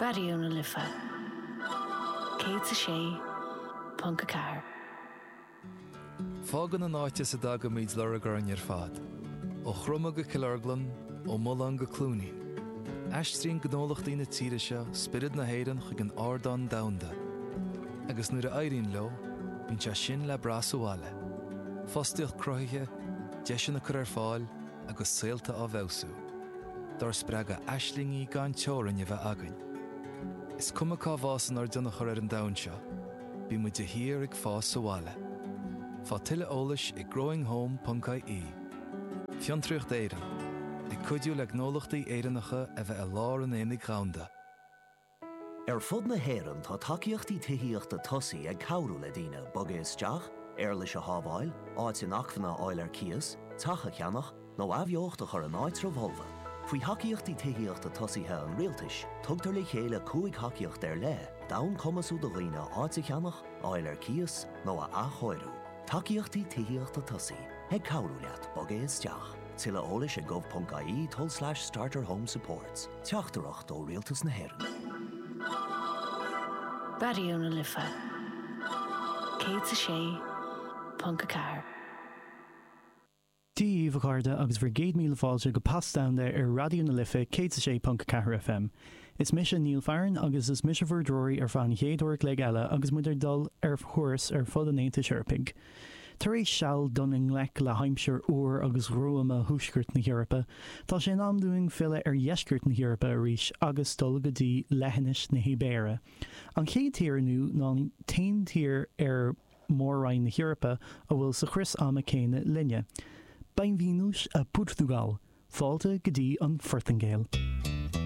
Raidió na Life 106.4. Fágann an áit as a dtagaimid lorg orainn ar fad, ó Chroma go Cill Orglan, ó Mhuileann go Cluainín. Aistríonn gnólachtaí na tíre seo spiorad na hÉireann chuig an ardán domhanda, agus nuair a éiríonn leo, bíonn sé sin le brath sa bhaile, fostaíocht cruthaithe, deiseanna curtha ar fáil, agus saolta á bhfeabhsú, dár spreagadh aislingí gan teorainn a bheith againn. Is cuma cá bhfásann ár dtionchar ar an domhan seo, bíonn muid de shíor ag fás sa bhaile. Faigh tuilleadh eolais ag growinghome.ie Fiontraíocht Éireann, ag cuidiú le gnólachtaí Éireannacha a bheith i lár an aonaigh dhomhanda. Ar fud na hÉireann tá tacaíochtaí tithíochta tosaigh ag cabhrú le daoine bogadh isteach, éarlais a shábháil, áit inacmhainne a fháil ar cíos, teach a cheannach, nó athbheocht a chur in áitribh fholmha. Faoi Thacaíochtaí Tithíochta Tosaigh an Rialtais, tugtar le chéile cúig thacaíocht ar leith d'fhonn cumasú do dhaoine áit a cheannach, a fháil ar cíos, nó a athchóiriú. Tacaíochtaí tithíochta tosaigh ag cabhrú leat bogadh isteach. Tuilleadh eolais ag gov.ie tulslais starter home supports. Teachtaireacht ó Rialtas na hÉireann. Raidió na Life 106.4. Dia daoibh a chairde agus bhur gcéad míle fáilte go Pas Domhanda ar Raidió na Life 106.4 FM. Is mise Neil Farren agus is mise bhur dtreoraí ar feadh an chéad uair a chloig eile agus muid ag dul ar thuras ar fud an Aontais Eorpaigh. Tar éis seal dul i ngleic le haimsir fhuar agus ghruama Thuaisceart na hEorpa, tá sé in am dúinn filleadh ar Dheisceart na hEorpa arís agus dul go dtí Leithinis na hIbéire. An chéad tír inniu ná an t-aon tír ar Mhór-Roinn na hEorpa a bhfuil sa chrios ama céanna linne. Bem-vindos a Portugal! Fáilte go dtí an Phortaingéil!